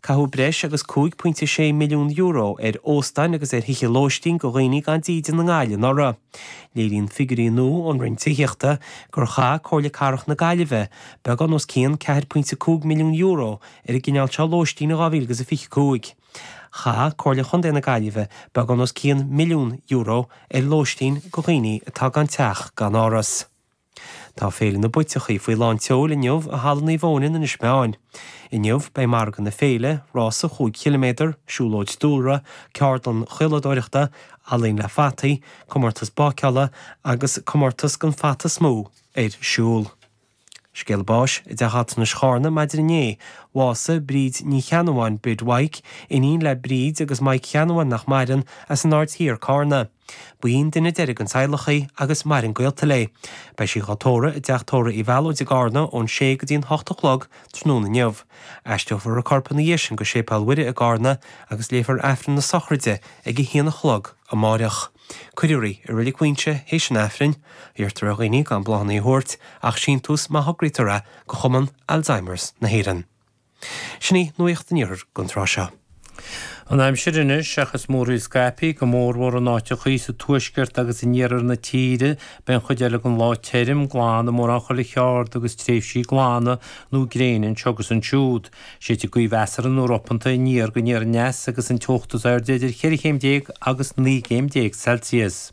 Caitheadh breis agus €5.6 milliún ar óstáin agus ar thithe lóistín go dhaoine gan dídean i nGaillimh anuraidh. Léiríonn figiúirí nua ón Roinn Tithíochta gur chaith Comhairle Cathrach na Gaillimhe beagán os cionn €4.5 milliún ar an gcineál seo lóistín in 2025. Chaith Comhairle Chontae na Gaillimhe beagán os cionn milliún euro ar lóistín go dhaoine atá gan teach gan áras. Tá Féile na bPuiteachaí faoi lán tseoil inniu i Halla Naomh Eoin in Inis Meáin. Inniu beidh Margadh na Féile, rás an chúig chiliméadar, siúlóid dúlra, ceardlann chaoladóireachta, ealaín le fataí, comórtas báiceála agus comórtas den fata is mó ar siúl. Scéala báis: i dTeach Altranais Charna maidin inné. Bhásaigh Bríd Ní Cheannabháin, Bríd Mhaidhc, iníon le Bríd agus Maidhc Uí Cheannabháin, nach maireann, as an Aird Thiar, Carna. Ba í an duine deiridh den teaghlach í agus maireann gaolta léi. Beidh sí dhá tórramh i dTeach Tóra Uí Mhealóid i gCarna ón sé go dtí an hocht a chlog tráthnóna inniu. Aistreofar a corp ina dhiaidh sin go Séipéal Mhuire i gCarna agus léifear Aifreann na sochraide ag a haon a chlog amáireach. Cuirfear í i Reilig Mhaínse théis an Aifrinn. Iarrtar ar dhaoine gan bláthanna a thabhairt ach síntiús má thograítear é go Chumann Alzheimer's na hÉireann. Sin í nuacht an iarthair don tráth seo. An aimsir anois, seachas múraíl scaipthe, go mórmhór in áiteachaí sa tuaisceart agus in iarthar na tíre. Beidh an chuid eile den lá tirim, glan i mórán chuile cheard agus tréimhsí glana nó gréine anseo agus ansiúd. Séidfidh gaoth mheasartha nó ropanta aniar go aniar aneas agus an teocht is airde idir cheithre chéim déag agus naoi gcéim déag Celsius.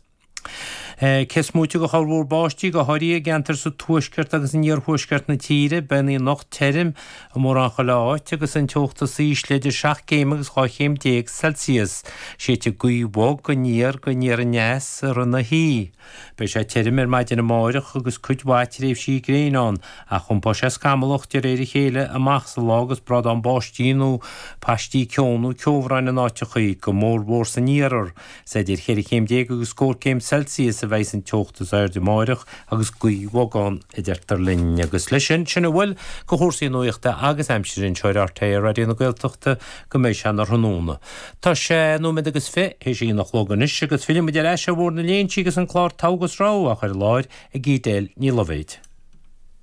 Cé is moite go chorrmhúr báistí, go háirithe i gceantair sa tuaisceart agus in iarthuaisceart na tíre, beidh an oíche anocht tirim i mórán chuile áit agus an teocht is ísle idir seacht gcéim agus dhá chéim déag Celsius. Séidfidh gaoth bhog aniar go aniar aneas i rith na hoíche. Beidh sé tirim ar maidin amáireach agus cuid mhaith tréimhsí gréine ann, ach iompóidh sé scamallach de réir a chéile amach sa lá agus brádán báistí nó paistí ceo nó ceobhráin in áiteachaí, go mór mhór san iarthar. Is idir cheithre chéim déag agus scór céim Celsius a bheidhs an teocht is airde amáireach agus gaoth bhog ann a deirtear linn. Agus leis sin, sin a bhfuil go chúrsaí nuachta agus aimsire anseo ar rte Raidió na Gaeltachta go mbeidh sé a sé tráthnóna. Tá sé nóiméad agus fiche théis a h-aon a chlog anois agus fillfidh muid ar ais ar Bhaile na nGall agus an clár Togha agus Rogha á chur i láthair ag Edel Ní Loibhéad.